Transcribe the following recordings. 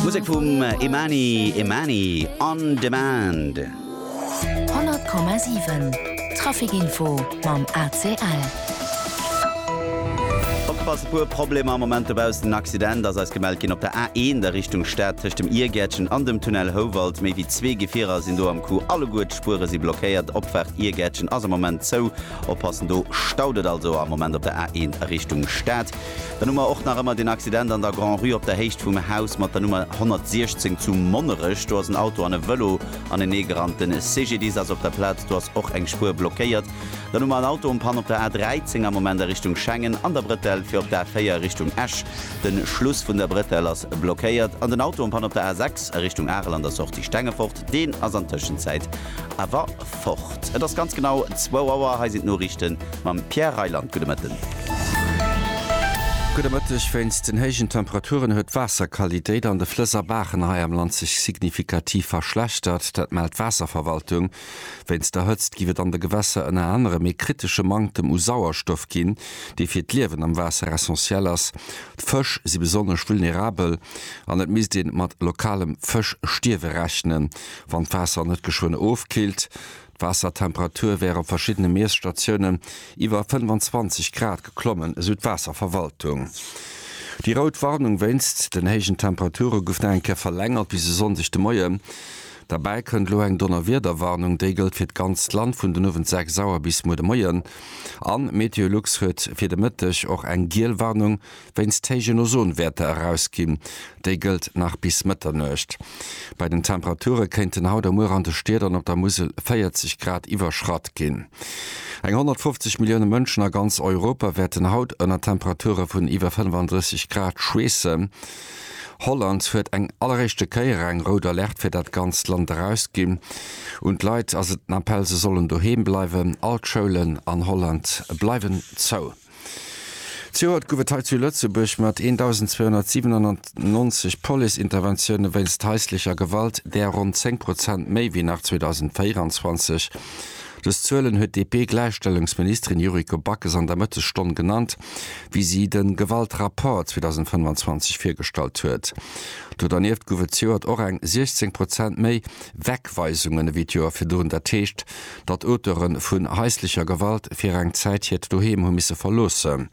Musek vum Imani Imani, On Demand. 100,7 Trafikinfo mam ACL. Opgepasst, e puer Problemer am Moment dobaussen. En Accident ass eis gemellt ginn op der A1 a Richtung Stad tëscht dem Iergäertchen an dem Tunnel Houwald. Méi wéi zwee Gefierer sinn do am Coup. Alleguer d'Spuere si blockéiert. Opfahrt Iergäertchen ass am Moment zou. Oppassen, do staut et also am Moment op der A1 a Richtung Stad. Dann hu mer och nach ëmmer den Accident an der Grand-Rue op der Héicht vum Haus mat der Nummer 116 zu Monnerech. Do ass en Auto an e Vëlo anenee gerannt. De CGDIS ass op der Plaz, do ass och eng Spuer blockéiert. Dann hu mer en Auto en panne op der A13 am Moment a Richtung Schengen an der Bretelle fir op d'A4 Richtung Esch. De Schluss vun der Bretelle ass blockéiert. An den Auto en panne op der A6 a Richtung Arel an der Sortie Stengefort, deen ass an Tëschenzäit awer. fort. Et ass ganz genau zwou Auer. Hei sinn d'Noriichte mam Pierre Reyland. Gudde Mëtten. Gudde Mëtteg. Wéinst den héijen Temperaturen huet d'Waasserqualitéit an de Flëss a Baachen hei am Land sech signifikativ verschlechtert. Dat mellt d'Waasserverwaltung. Wéinst der Hëtzt giff et an de Gewässer ënner anerem ee kritesche Manktem u Sauerstoff ginn, dee fir d'Liewen am Waasser essentiell ass. D'Fësch si besonnesch vulnerabel an et misst ee mat lokalem Fëschstierwe rechnen. wann d'Waasser net geschwënn ofkillt. D'Waassertemperature wär op verschiddene Miesstatiounen iwwer 25 Grad geklommen, esou d'Waasserverwaltung. Déi rout Warnung wéinst den héijen Temperature gouf nach eng Kéier verlängert bis e Sonndeg de Moien. Derbäi kënnt elo eng Donnerwiederwarnung. Déi gëllt fir d'ganzt Land vun den Owend 6 Auer bis muer de Moien. A Meteolux huet fir de Mëtteg och eng giel Warnung wéinst héijen Ozonwäerter erausginn. Déi gëllt nach bis Mëtternuecht. Bei den Temperature kéinten haut a muer an de Stied an op der Musel 40 Grad iwwerschratt ginn. Eng 150 Millioune Mënschen a ganz Europa wäerten haut ënner Temperature vun iwwer 35 Grad schweessen. Holland huet eng alleréischte Kéier eng rout Alerte fir dat ganzt Land erausginn. Un d'Leit ass et den Appell, se sollen doheem bleiwen. All d'Schoulen an Holland bleiwen zou. Zejoert gouf et hei zu Lëtzebuerg mat 1.297 Police-Interventioune wéinst haislecher Gewalt, där ronn 10 Prozent méi wéi nach 2024. Dës Zuelen huet d'DP-Gläichstellungsministerin Yuriko Backes an der Mëttesstonn genannt, wéi si de Gewaltrapport 2025 virgestallt huet. Do dernieft gouf et zejoert och eng 16 Prozent méi Wegweisungen ewéi d'Joer virdrun, dat heescht, datt Auteure vun haislecher Gewalt fir eng Zäit hiert Doheem hu misse verloossen.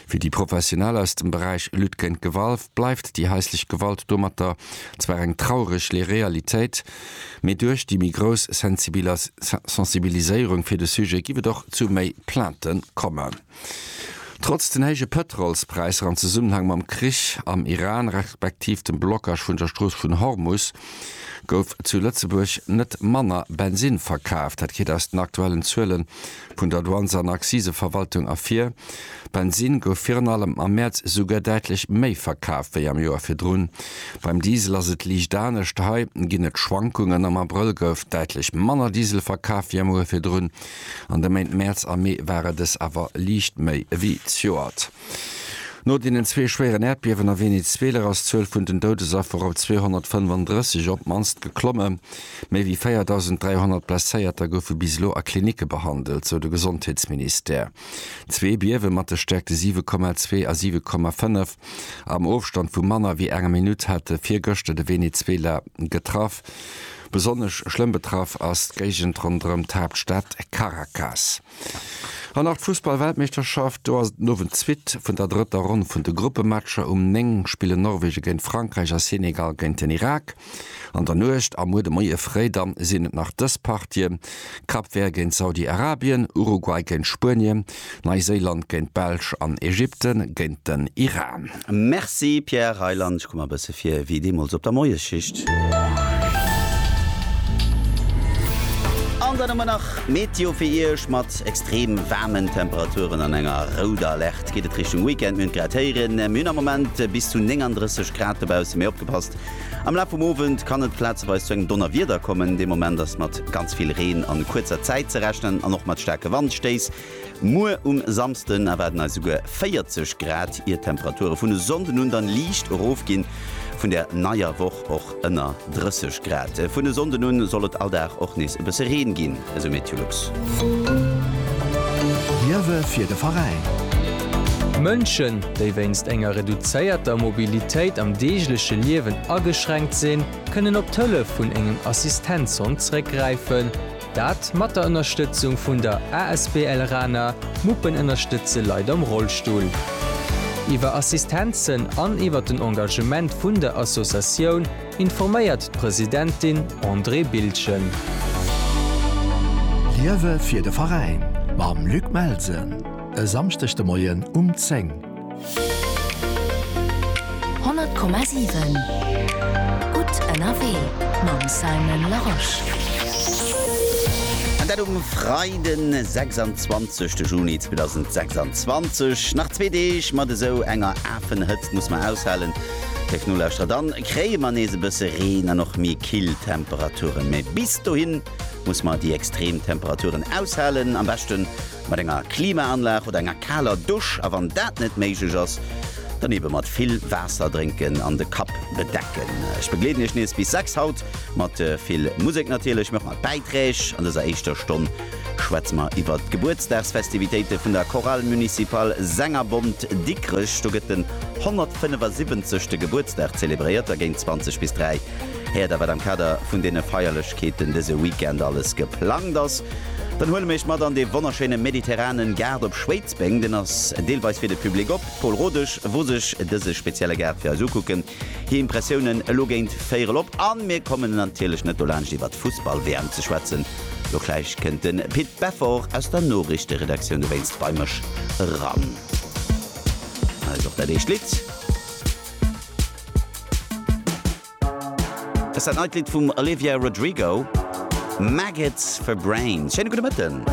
Fir déi Professionell aus dem Beräich Lutte géint Gewalv bleift déi haislech Gewalt domatter zwar eng traureg le Realitéit, mee duerch déi méi grouss Sensibilas Sensibiliséierung fir de Sujet giff et och zu méi Plainten kommen. Trotz den héije Pëtrolspräisser am Zesummenhang mam Krich am Iran respektiv dem Blockage vun der Strooss vun Hormus gouf zu Lëtzebuerg net manner Bensinn verkaaft. Dat geet aus den aktuellen Zuele vun der Douanes an Acciseverwaltung ervir. Bensinn gouf virun allem am Mäerz esouguer däitlech méi verkaaft wéi am Joer virdrun. Beim Diesel ass et liicht anescht, hei ginn et Schwankungen. Am Abrëll gouf däitlech manner Diesel verkaaft wéi am Joer virdrun. An de Méint Mäerz a Mee ware dës awer liicht méi ewéi d'Joert. No deenen zwee schwéieren Äerdbiewen a Venezuela ass d'Zuel vun den Doudesaffer op 235 op d'mannst geklomme. Méi ewéi 4.300 Blesséierter goufe bis elo a Klinicke behandelt, sou de Gesondheetsministère. Zwee Biewe mat de Stäerkte 7,2 a 7,5 am Ofstand vu manner ewéi enger Minutt hate virgëschter de Venezuela getraff. Besonnesch schlëmm betraff ass d'Géigend ronderëm d'Haaptstad Caracas. An nach d'Fussballweltmeeschterschaft. Do ass et den Owend d'Suite vun der drëtter Ronn vun de Gruppematcher. Um 9 spillen Norwegen géint Frankräich a Senegal géint den Irak an der Nuecht a muer de Moie fréi. Da sinn et nach dës Partien, Cap Vert géint Saudi-Arabien, Uruguay géint Spuenie, Neiséiland géint d'Belsch an Ägypte géint den Iran. Merci Pierre Reyland, ech komm mer e bësse vir wéi deemools op der Moiesschicht. An dann hu mer nach d'Meteo fir Iech. Mat extrem waarmen Temperaturen an enger rouder Alerte geet et Richtung Weekend. Mir hunn et grad héieren, mir hunn am Moment bis zu 39 Grad dobaussen, mee opgepasst, Am Laf vum Owend kann et plazeweis zu engem Donnerwieder kommen. Dee Moment ass mat ganz vill Reen a kuerzer Zäit ze rechnen an och mat staarke Wandstéiss. Muer um Samsden erwaarden eis esouguer 40 Grad, ier d'Temperature vun e Sonnden un dann liicht erofginn. Vun der neier Woch och ënner 30 Grad. Vun e Sonnden un soll et all Dag och nees e bësse Reen ginn. esou Meteolux. Liewe fir de Veräin. Mënschen, déi wéinst enger reduzéierter Mobilitéit am deegleche Liewen ageschränkt sinn, kënnen op d'Hëllef vun engem Assistenzhond zréckgräifen. Dat mat der Ënnerstëtzung vun der asbl Rana, Muppen ënnerstëtze Leit am Rollstull. Iwwer Assistenzen an iwwer den Engagement vun der Associatioun. informéiert d'Presidentin Andrée Bildgen. Liewe fir de Veräin mam Luc Melsen e Samschdeg de Moien um 10. 100,7 Gutt ënnerwee mam Simon Larosche. An dat um Freiden, 26 Juni 2026. Nach zwee Deeg mat esou enger Afenhëtzt muss mer aushalen. Léif Nolauschterer, dann kréie mer nees e bësse Reen an och méi kill Temperaturen. Mä bis dohin musse mer déi extrem Temperaturen aushalen, am beschte mat enger Klimaanlag oder enger kaler Dusch, a wann dat net méiglech ass, dann ebe mat vill Waasser drénken an de Kapp bedecken. Ech begleeden Iech nees bis 6 haut mat vill Musek natierlech, mä och mat Bäiträg an dëser éischter Stonn schwätze mer iwwert d'Gebuertsdagsfestivitéite vun der Chorale Municipale Sängerbond Dikrech. Do gëtt den 175. Gebuertsdag zelebréiert a géint 20 bis 3 héiert der, wat am Kader vun deene Feierlechkeeten dëse Weekend alles geplangt ass. Dann huele mir iech mat an dee wonnerschéine mediterranen Gaart op Schwéidsbeng. Deen ass deelweis fir de Public op. D'Paul Rodesch wor sech dëse spezielle Gaart fir eis ukucken. Hir Impressiounen elo géint Véierel op an mir kommen natierlech net dolaanscht iwwert d'Fussball-WM ze schwätzen. Lo gläich kënnt de Pit Beffort aus der Noriichteredaktioun dowéinst bei mech eran. Hei ass och dat éischt Lidd. Dat ass dat neit Lidd vum Olivia Rodrigo, Maggots for Brains. Schéine gudde Mëtten.